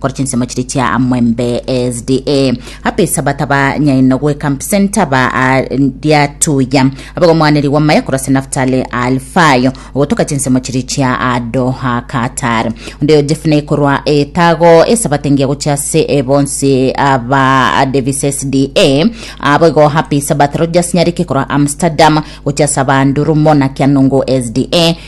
Kore chinsemo chiria chia Mwembe SDA apa Esabato ba nyaino gwe Camp Center ba ria Tuya aba omwaneri wa maya korase Naftali Alfayo ogotoka chinsemo chiria chia Doha Qatar onde ojefuna ekorwa etago Esabato engiya gochia ase ebonsi aba Davis SDA abo igo apa Esabato Rogers nyareke korwa Amsterdam gochia ase aba Ndurumo na Kianungu SDA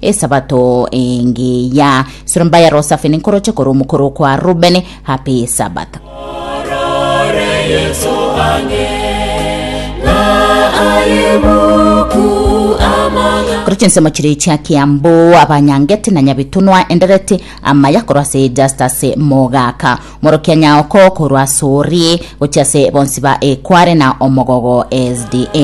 Esabato engiya Surumba ya Rosafi ninkoroche korwa omokoro okwa Rubeni happy Sabbath. Korwa chinsemo chire chia Kiambu abanyangeti na Nyabitunwa endereti amaya korwa ase Justus Mogaka morokia Nyaoko korwa Sori gochia ase bonsi ba Ekware na Omogogo SDA.